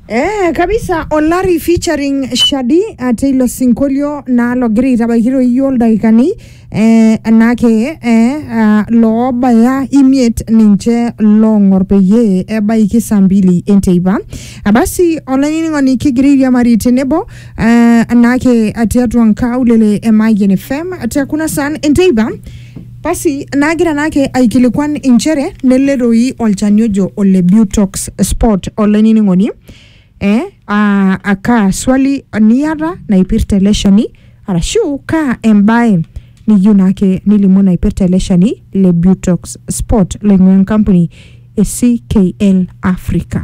Eh, kabisa olari featuring shadi uh, teilo sinkolio naa logira aitabaiki toi iyio ildaikani eh, naake eh, uh, loobaya imiet ninche loong'or peyie ebaiki saa mbili enteipa Ah, basi olainining'oni kigira airiamari tenebo eh, naake tiatua nkaulele e Mayian FM te kuna saan enteipa Basi naagira naake aikilikuan inchere nele doi olchani ojo ole Butox Spot olainining'oni eh, aa a kaa swali niata naipirta ele shani arashu kaa embae niyieu naake nilimu naipirta ele shani le Butox Spot loing'ua enkampuni e CKL Africa.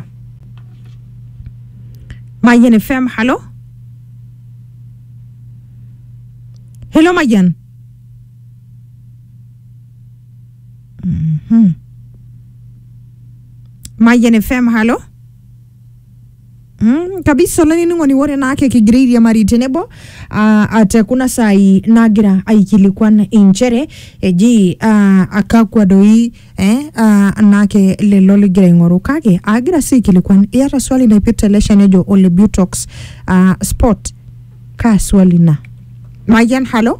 Mayian FM, halo? Hello Mayian. Mhm. Mayian FM, halo. Mm, kabisa olainining'oni ore naake kigira airiamari tenebo ah, ate kuna saai nagira aikilikuan inchere eji ah, akakwa doi eh, ah, naake lelo ligira aing'oru kake agira sii aikilikuan iyata swali naipirta ele shani ojo ole butox ah, spot kaa swali ina mayian halo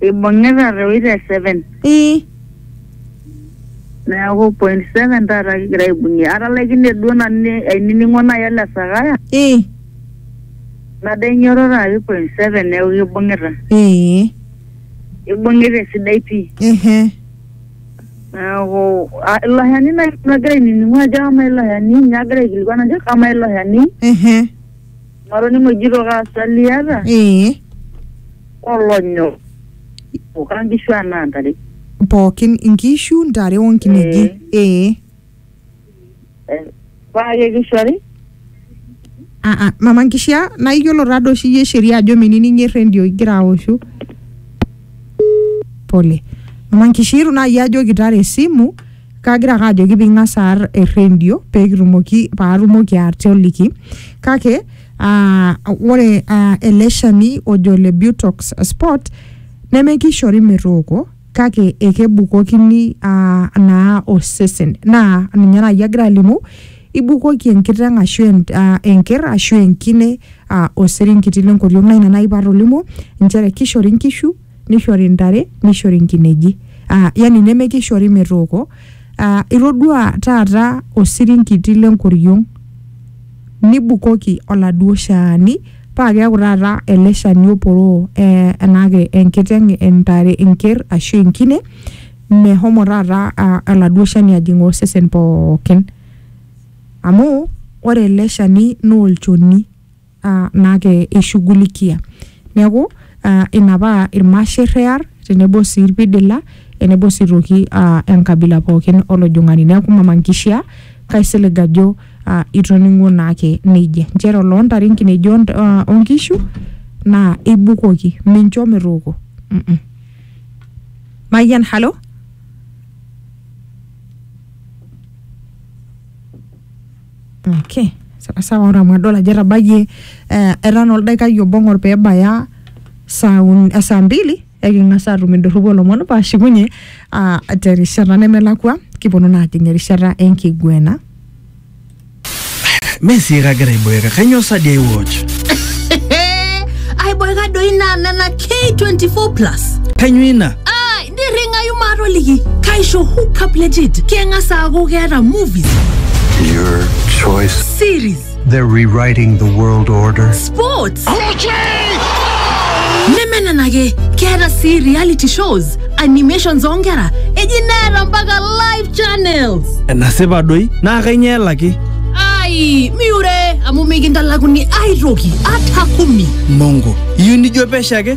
Ibung'ita te wita e seven. ii Neeku point seven taata kigira aibung'ie. Atalaikine duo nanu ni- ainining'o nai ele Sakaya, ii nado ainyototo apik point seven neeku kibung'ita. ee Ibung'ita esidai pii. ehe Neeku ah, ilo shani nai nanu agira ainining'u ajo amaa ilo shani, ninye agira aikilikuan ajo amaa ilo shani. ehe Matoning'o ejito kaa swali iyata? ee Olonyo. Okaa nkishu anaa ntare. pookin inkishu ntare onkineji ee Eh, Paa kekishori? Ah, ah, mama nkishia naa iyiolo taa doi oshi iyie sheria ajo minining errendio igira aoshu pole mama nkishia itu naa iyie ajoki tara esimu kagira ake ajoki ping'as aar errendio pekitumoki paatumoki atoliki kake uh, ore uh, ele shani ojo le butox spot nemekishori metooko kake ekebukokini uh, naa osesen naa ninye naaji agira alimu ibukoki enkiteng ashu en, uh, enker ashu enkine uh, osirinkiti lenkoriong naa ina naaji patolimuo inchere kishori inkishu nishori ntare, nishori nkineji. Ah, yani nemekishori metooko. Ah, itodua taata osirinkiti lenkoriong, nibukoki oladuo shaani, pa keeku taata ele shani oporoo eh enake enkiteng entare enker ashu enkine, mehomo taata aladuo shani ajing' osesen pookin. Amu, ore ele shani nolchoni. naa keishugulikia. Neaku, ina paa ilmasher ear tenebo sii ilpidila tenebo sii aitoki enkabila pooki olojong'ani. Neaku mama nkishaa kaisilig ajo itoning'o naake neija. Nchere oloo ntare, nkineji o nkishu naa ibukoki mincho metooko. Mayian, halo? Okay. Sawa sawa ore amu adol ajo etabayie eh, etaa naa oldaikai obo ng'or pee ebaya saa uni- eh, saa mbili eking'as aatum indorropu olomon paashukunye ah, terishata nemelakua kiponu naa ajing erishata enkiguena. mesie kagira aiboeka kanyoo sadi ai watch aiboeka doi naa nena k24 plus kanyoo ina nirringayu maatoliki kaisho hookup legit keng'as aaku keeta movies Your choice. series They're rewriting the world order. sports neme nena ake keeta sii reality shows animations oonkera eji neeta mpaka live channels enasipa doi naa kainyoo elaki ai miure amu mikintalakuni aitoki ata kumi mongo iyieu nijo pesho ake